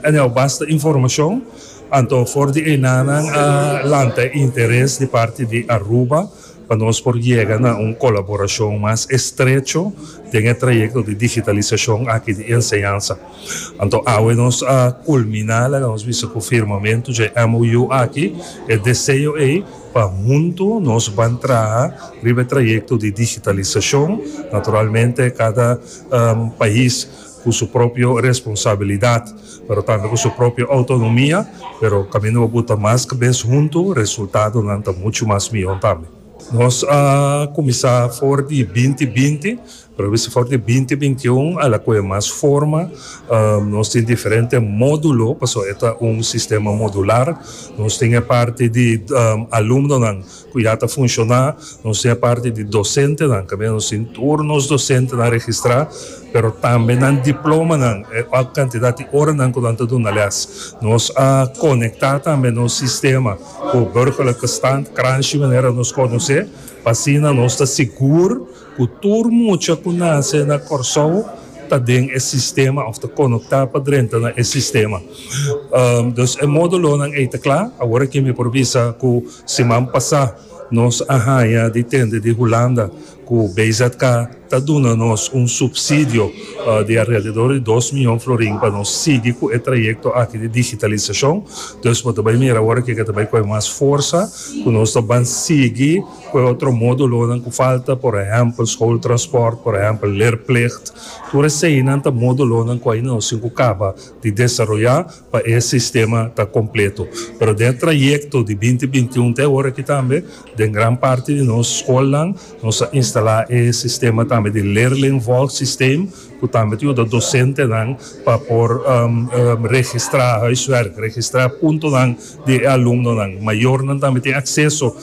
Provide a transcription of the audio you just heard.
Anyao basta informacion, anto for di eina nan a lanta e interes di parti di Aruba pa nos por yega na un colaboracion mas estrecho den e trayecto di digitalisacion aki di enseñansa. Anto awe nos a culmina, laga nos bisa cu firmamento dje MOU aki, e deseo ey pa hunto nos ban traha riba e trayecto di digitalisacion, naturalmente cada pais. cu su propio responsabilidad pero tambe cu su propio autonomia pero caminda bo buta mas cabes hunto resultadonan ta mucho mas miho tambe. Nos a cuminsa for di binti binti pero bisa for di binti binti un a la coge mas forma nos tin diferente modulo pasobra e ta un sistema modular nos tin e parti di alumnonan Cu ya ta funciona, nos tin e parti di docentenan, cabia nos tin tur nos docentenan registra, pero tambe nan diplomanan, e hoc cantidad di oranan cu nan ta duna les. Nos a conecta tambe nos sistema cu Burgerlijke Stand, Kranshi manera nos conoce, pa asina nos ta sigur, Ku tur mucha ku nase na Kòrsou ta den e sistema òf ta konoktá pa drenta na e sistema. Dus e módulonan ei ta kla. Awor aki mi por bisa ku siman pasá nos a haña di tende di Hulanda ku BZK ta duna nos un supsidio di alrededor di dos mion florin pa nos sigui ku e trayekto aki di digitalisashon. Dus bo ta bai mira awor aki ke ta bai kohe mas forsa ku nos ta ban sigui. Cu e otro modulonan cu falta, por ehempel, schooltransport, por ehempel, leerplicht, tur eseinan ta modulonan cu aina nos tin cu caba di desaroya pa e sistema ta completo. Pero den e trayecto di binti bintiun te ora aki tambe, den gran parti di nos scolnan nos a instala e sistema tambe di leerlingvolgsysteem, cu tambe ta yuda docentenan pa por registra huiswerk, registra puntonan di e alumnonan. Mayornan tambe tin acceso